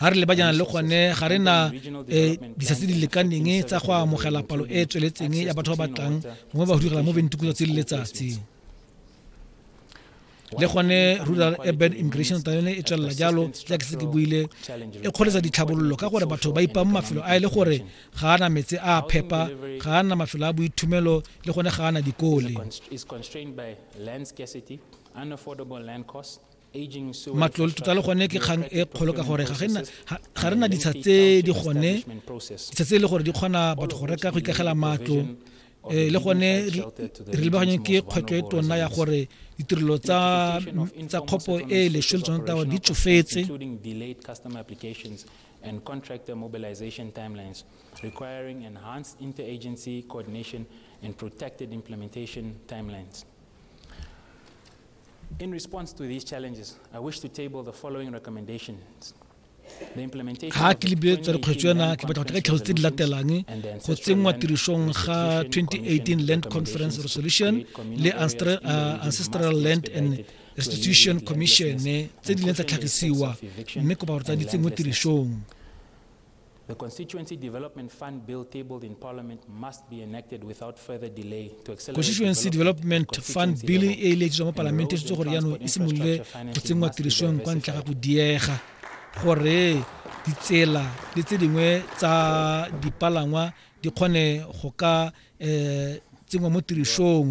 ga re lebajana le gone ga re na um eh, disa tse di lekaneng tsa go amogela palo e e tsweletseng ya batho ba batlang gongwe ba go direla mo bentukulo tse le letsatsi le gone rural urban immigration ta yone e tswelela jalo jaak se ke buile e kgweletsa ditlhabololo ka gore batho ba ipang mafelo a e le gore ga ana metse a phepa ga ana mafelo a boithumelo le gone ga ana dikole matlole tota le gone ke kgang e kgolo ka gore ga re na ditsha tse di gone ditsha tse e le gore di kgona batho go reka go ikagela matlo um le gone re lebaganyeng ke kgwetlho e tona ya gore ditirelo tsa tsa kgopo e leswe le tsone tawa di tsofetse and contractor mobilization timelines requiring enhanced interagency coordination and protected implementation timelines In response to these challenges, I wish to table the following recommendations. ga ke lebile tsa dikgwetso yana ke batla go tla tlhaloso tse di latelang go tsenngwa tirisong ga 2018 land conference resolution le uh, ancestral land and restitution commission tse di leng tsa tlhagisiwa mme kopa gore tsa di tsenngwe tirisong The Constituency Development Fund Bill tabled in Parliament must be enacted without further delay to accelerate Constituency Development Fund Bill e e letswa mo Palamente e gore yano e simolole go tsenngwa tirisong kwa ntle ga go diega gore ditsela le tse dingwe tsa dipalangwa di kgone go ka um tsenngwa mo tirisong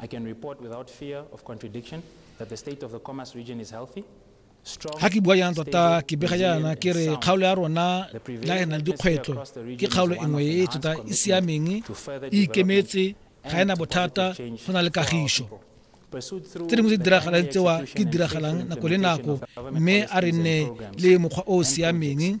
I can report without fear of contradiction that the state of the Khomas region is healthy. ga ke bua yang tota ke bega jaana ke re kgaolo ya rona la e na le dikgwetlho ke kgaolo e nngwe e tota e siameng e ikemetse ga ena bothata go na le kagišo tse dingwe tse di diragalang tsewa ke diragalang nako le nako mme a re nne le mokgwa o o siameng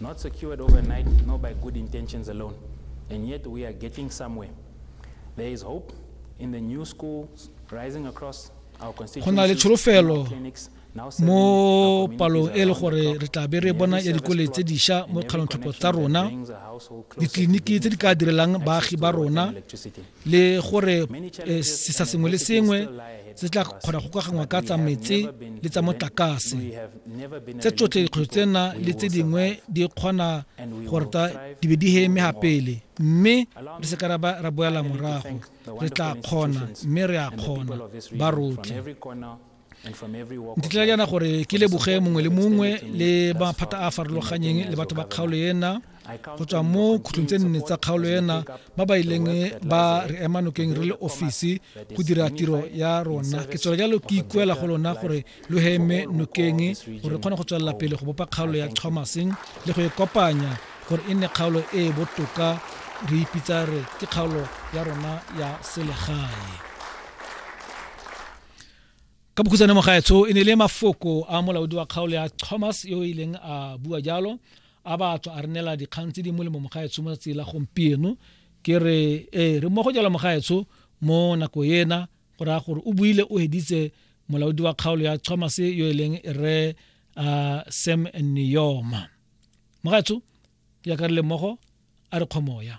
Not secured overnight, nor by good intentions alone, and yet we are getting somewhere. There is hope in the new schools rising across our constituencies. Go na le tsholofelo mo palong e le gore re tla be re bona ya dikole tse diša mo kgalontlhopho tsa rona ditleliniki tse di ka direlang baagi ba rona le gore eh, sesa sengwe le sengwe se tla kgona go kaganngwa ka tsa metse le tsa motlakase tse tsotlhe dikgwetlho tsena le tse dingwe di kgona gore ta di be di heme gapele mme re se ka ra boela morago re tla kgona mme re a kgona ba rotlhe di tla yana gore ke leboge mongwe le mongwe le maphata a a farologanyeng le batho ba kgaolo ena go tswa mo khutlong tse nne tsa kgaolo ena ba ba ileng ba re ema nokeng re le ofisi go dira tiro ya rona ke tswela jalo ke ikuela go lona gore lo heme nokeng gore re kgone go tswelela pele go bopa kgaolo ya thomaseng le go e kopanya gore e nne kgaolo e e botoka re ipitsa re ke kgaolo ya rona ya selegae ka bokhutsane mo gaetsho e ne le mafoko a molaodi wa kgaolo ya thomas yo e leng a bua jalo a batho a re neela dikgang tse di molemo mogaetsho mo tsela gompieno ke re ee re mmogo jalo mogaetsho mo nako ena go raya gore o buile o heditse molaodi wa kgaolo ya thomas yo e leng re uh, sam neoma mogaetsho ya ka re le mmogo a re kgomoya